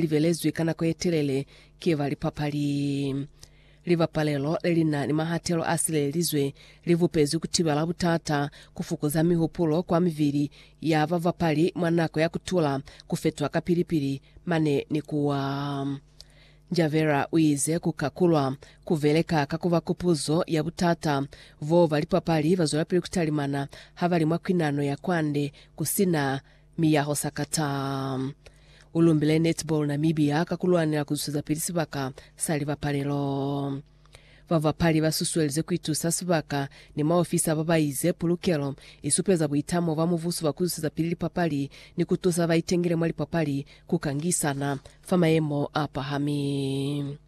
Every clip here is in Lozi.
libelezwi ka nako yetelele ki ba lipapali. Libapalelo lelina ni mahatelo a silelelizwe li bupezwi kutibela butata, kufukuza mihupulo kwa mibili ya babapali mwa nako ya kutula, kufetwa kapili-pili, mane ni kuwa. Njavera uize kuka kulwa kubeleka ka kuba kupuzo ya butata boo ba lipapali bazwelapili kutalimana habali mwa kwinano ya kwande kusina Miyaho Sakata u lumbile Netball Namibia ka ku lwanela ku zwezapili sibaka sa libapalelo. Babapali ba susuelize ku itusa sibaka ni maofisa ba ba ize pulukelo i supeza buitamo bwa mubuso bwa ku zwezapili lipapali ni ku tusa ba itengile mwa lipapali ku kangisana fa mayemo a pahami.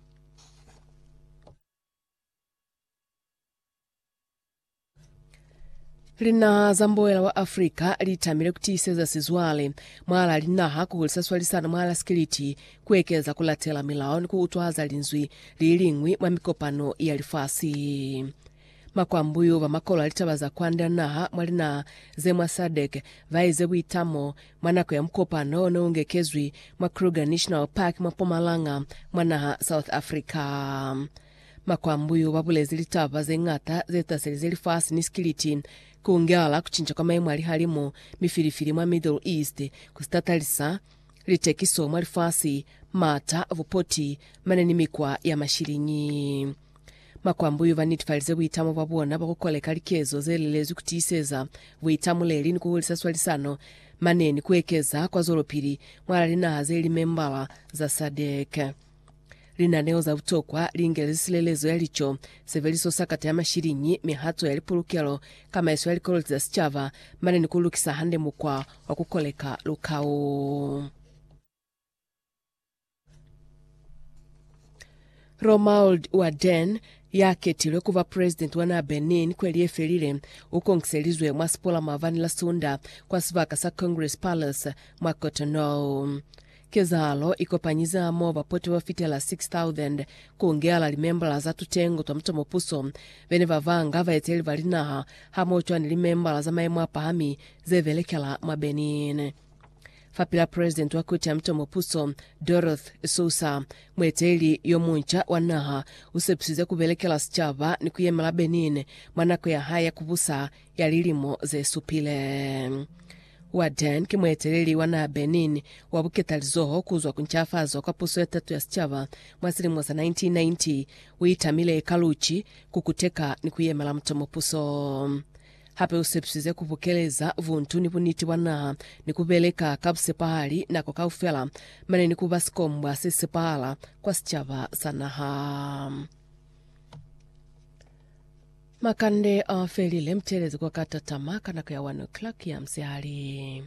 Linaha za mboela wa Afrika li tamile ku tiiseza sizwale mwalaa linaha ku hulisa swalisano mwalaa sikiliti, ku ekeleza ku latela milao ni ku utwahaza linzwi li liñwi mwa mikopano ya lifasi. Makwambuyu ba makolo a litaba za kwand'a naha mwa linaha ze mwa SADC ba ize buitamo mwa nako ya mukopano o ne u ngekezwi mwa Kruger National Park mwa Mpumalanga mwa naha South Africa. Makwambuyu ba bulezi litaba ze ñata ze taselize lifasi ni sikiliti, ku ngelala ku cinca kwa maimo a lihalimu, mifilifili mwa Middle East, ku si tatalisa litekiso mwa lifasi, m'ata, bupoti, mane ni mikwa ya mashiliñi. Makwambuyu ba netifalize buitamo bwa bona bwa ku koleka likezo ze lelezwi ku tiiseza buitamuleli ni ku hulisa swalisano mane ni ku ekeza kwazwelopili mwa linaha ze li membala za SADC. Linaneo za butokwa li ingelezi silelezo ya lico, sebeliso sa kata ya mashiliñi, mihato ya lipulukelo, kamaiso ya likoloti za sicaba, mane ni ku lukisa hande mukwa wa ku koleka lukau. Romuald Waden, ya ketilwe ku ba presidenti wa naa Benin kweli ye felile, u konkiselizwe mwa sipola maabani la Sunda kwa sibaka sa Congress Palace mwa Cotonou. Kezahalo i kopanyize hamoho bapoti ba fitela 6,000, ku ngehala limembala za tutengo twa mutomopuso, be ne ba banga, baeteleli ba linaha, hamoho cwani ni limembala za maemo a pahami ze belekela mwa Benin. Fapil'a Presidenti wa Koti ya Mutomopuso, Doroth Sousa, mueteleli yo munca wa naha u sepisize ku belekela sicaba ni ku yemela Benin mwa nako ya hae ya ku busa ya lilimo ze supile. Wa Dan ki mueteleli wa naha Benin wa buketalizoho kuzwa ku ncafazo kwa puso ya tato ya sicaba mwa silimo sa 1990. U itamile ka luci, ku kuteka ni ku yemela mutomo puso. Hape u sepisize ku bukeleza buntu ni buniti bwa naha ni ku beleka ka busepahali nako kaufela mane ni ku ba sikombwa se sepahala kwa sicaba sa naha. Makande a felile, mutelezi kwa ka tatama ka nako ya 1 o'clock ya musihali.